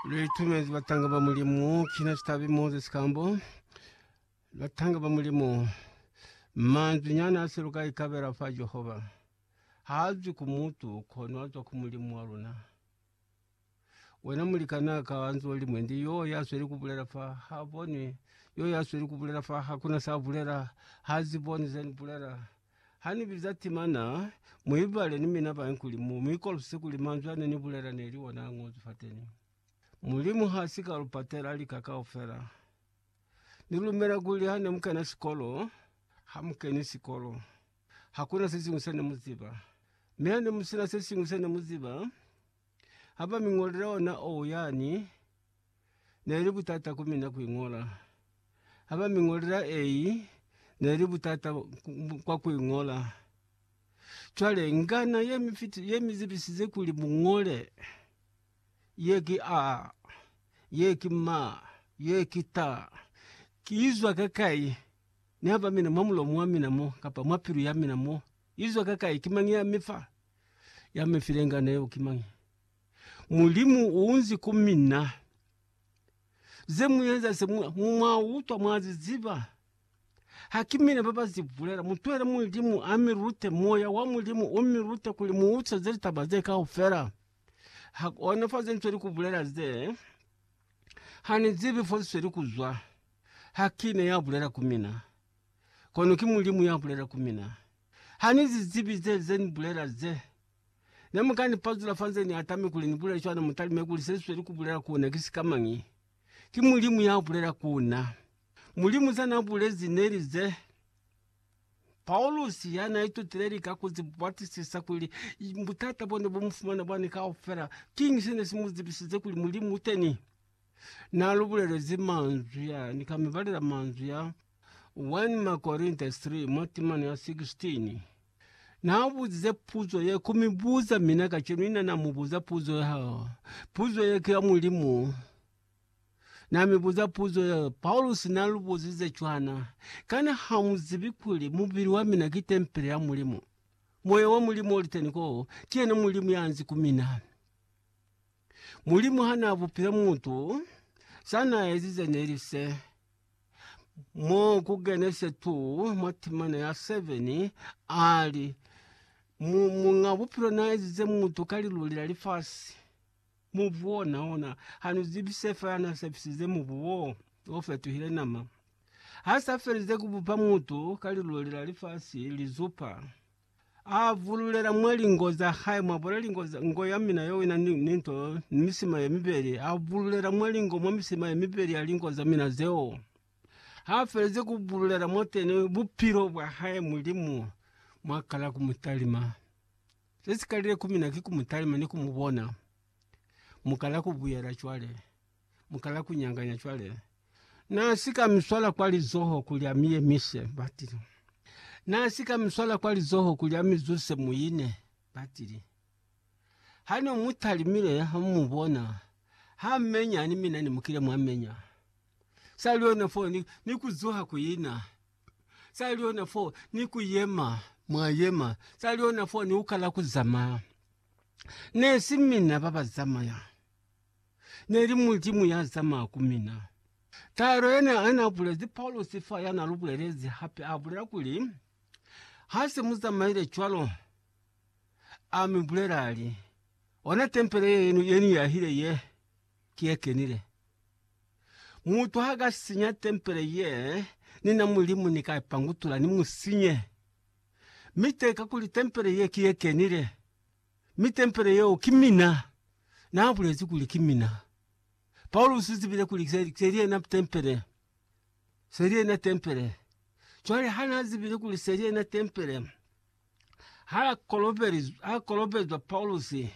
Litumezi batanga ba Mulimu, kina sitabi Moses Kambo. Batanga ba Mulimu, manzwi nyana a seluka ikabela fa Jehova. Ha azwi ku mutu, kono azwa ku Mulimu wa luna. Wena mulikana ka anzo limwe ndi yo ya sweli kubulela fa ha bonwi, yo ya sweli kubulela fa hakuna sa bulela, ha ziboni zeni bulela. Ha ni biza timana, mu ibale ni mina bañwi kuli mu mi kolopise kuli manzwi a ne ni bulela ne li ona a ñozwi fateni. Mulimu ha si ka lu patela lika kaufela. Ni lumela kuli ha ne mu kena sikolo, ha mu keni sikolo, hakuna se siñwi se ne mu ziba. Mi ha ne mu sina se siñwi se ne mu ziba, ha ba mi ñolela ona o yani, neli butata ku mina ku iñola. Ha ba mi ñolela ei, neli butata kwa ku iñola. Cwale ngana ye mi fiti, ye mi zibisize kuli mu ñole, ye ki A, ye ki Ma, ye ki Ta, ki izwa ka kai? Ni ha ba mina mwa mulomo wa mina mo, kapa mwa pilu ya mina mo, izwa ka kai? Ki mañi ya mi fa? Ya mi file ngana yeo ki mañi? Mulimu uunzi ku mina. Ze mueza se mu mwa utwa mwa zi ziba. Ha ki mina ba ba zi bulela. Mutwele Mulimu a mi lute, Moya wa Mulimu u mi lute kuli mu utweze litaba ze kaufela. Ha kona fa ze nsweli ku bulela ze, ha ni zibi fo zi sweli ku zwa. Ha ki na ya bulela ku mina, kono ki Mulimu ya bulela ku mina. Ha ni zi zibi ze, ze ni bulela ze. Ne mu ka ni pazula fa nze ni atame kuli ni bulele cwana, mu talime kuli se ni sweli ku bulela ku ona ki sika mañi? Ki Mulimu ya bulela ku na. Mulimu ze na bulezi ne li ze. Paulusi, ya na itutile lika ku zi batisisa kuli butata bo ne bu mu fumana bwani kaufela, kiñi se ne si mu zibisize kuli Mulimu u teni? Na lu bulelezi manzwi a, ni ka mi balela manzwi a. 1 Makorinta 3 mwa timano ya 16 Naabuzize puzo ye ku mi buza, mina kacenu ina na mu buza puzo ya. Puzo ye ki ya Mulimu. Na mi buza puzo ye, Paulusi na lu buzize cwana, Kana ha mu zibi kuli mubili wa mina ki tempele ya Mulimu? Moya wa Mulimu oli teni ko, ki yena Mulimu ya nzi ku mina. Mulimu ha na bupile mutu, sa na ezize neli se. Mo ku Genese 2 mwa timana ya 7, a li, Mu, Muñ'a Bupilo n'a ezize mutu ka liluli la lifasi. Mubu wona, ona, ha nu zibi se fela n'a sepisize mubu wo, o fetuhile nama. Ha s'a felize ku bupa mutu ka liluli la lifasi, lizupa, A vululela mwa lingo za hae, mwa bona lingo za ngo ya mina yo ina ni, ni nto, ni misima ye mibeli. A vululela mwa lingo, mwa misima ye mibeli ya lingo za mina zeo. Ha felezi ku vululela mwateni bupilo bwa hae, Mulimu mwa kala ku mu talima. Se si kalile ku mina ki ku mu talima ni ku mu bona. Mu kala ku buyela cwale. mukala kunyanganya cwale. Na si ka mi swala kwa lizoho kuli a mi yemise, batili. Na si ka mi swala kwa lizoho kuli a mi zuse muine, batili. Ha no mu talimile, ha mu mu bona, ha menya, ni mina ne mukile mwa menya. Sa li ona foo, ni, ni ku zuha ku ina. Sa li ona foo, ni ku yema, mwa yema. Sa li ona foo, ni ukala ku zamaya. Ne si mina ba ba zamaya. ne li Mulimu ya zamaya ku mina. Taelo ye ne a na bulezi Paulusi fa ya na lu bulelezi hape a bulela kuli, Ha se mu zamaile cwalo, a mi bulela a li, Ona tempele ye ni yahile ye, ki ye kenile. Mutu ha ka sinya tempele ye ni na Mulimu, ni ka i pangutula ni mu sinye. Mi te kakuli tempele ye ki ye kenile, Mi tempele yeo ki mina. Naabulezi kuli ki mina. Paulusi uzibile kuli se, seli yena tempele. Seli yena tempele. Cwale hanaazibile kuli seli yena tempele, hakolobelizwa, hakolobezwa Paulusi,